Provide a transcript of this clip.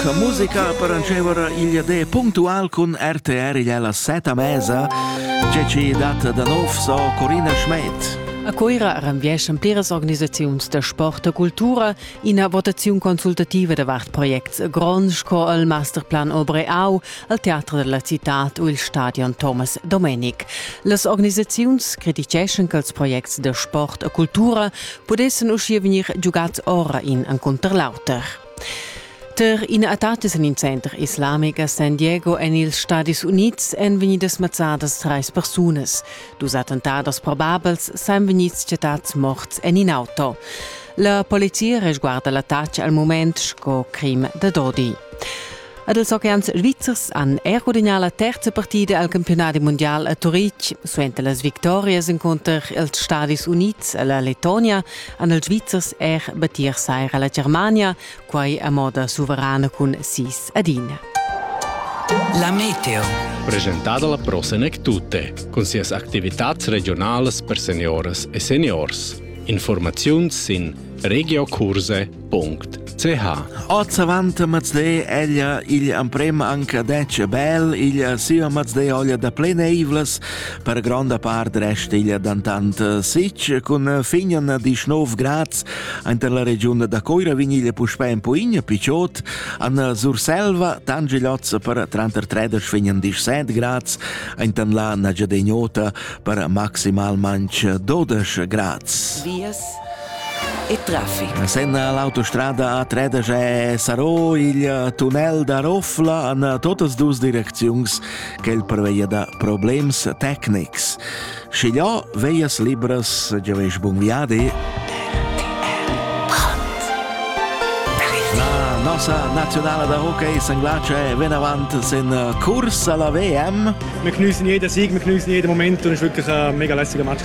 La musica paranceva era il de puntual cun RTR igl alla seta mesa, tge ci dat da nov so Corina Schmidt. A Coira renvieschan pliras organisaziuns da sport e cultura ina votaziun consultativa davart projects gronds sco il Masterplan Obreau, al Teatro della Città u il Stadion Thomas Domenic. Las organisaziuns criticeschan che els projects da sport e cultura pudessen uschia vegnir giugats ora in encontro l'auter. Tar ina attacca en il center islamic a San Diego en ils Stadis Unids èn vegnidas mazzadas trais persunas. Dus attentados probabels sajan vegnids chattads morts en in auto. La polizia resguarda l'attacca al mument sco crim da dodi. Ed ils oceans svizzers han er gudagnà la terza partida al campiunadi mundial a Turitg. Suenter las victorias encunter els Stadis Unids e la Letonia han ils Svizzers er battir saira la Germania, quai a moda suverana cun sis ad ina. La meteo. Presentada la prossima tutte, con sias attivitates regionales per seniores e seniors. Informazioni in regiocurse.it ch. Oz avant mazlé ella igl amprema anca detg bel, igl siva mazlé olja da pleneivlas, per gronda part rest igl dantant sic, cun fignan dis 9 grads inter la regiun da Coira vin igl puspè en Puign, Picciot, an Surselva, Tangiloz per tranter tredic fignan dis 7 grads, inter la Nagiadegnota per maximalmanc 12 grads. Vias e traffic. Senna l'autostrada a Tredesch e Sarò il tunnel da Roffla an totas dus direcziuns quel preveia da problems tecnics. Schigliò veias libras giaveish bun viadi. La nossa nazionale da hockey St. Glace è ben avanti sen Kurs alla WM. Wir genießen jeden Sieg, wir genießen jeden Moment und es war wirklich ein mega lässiger Match.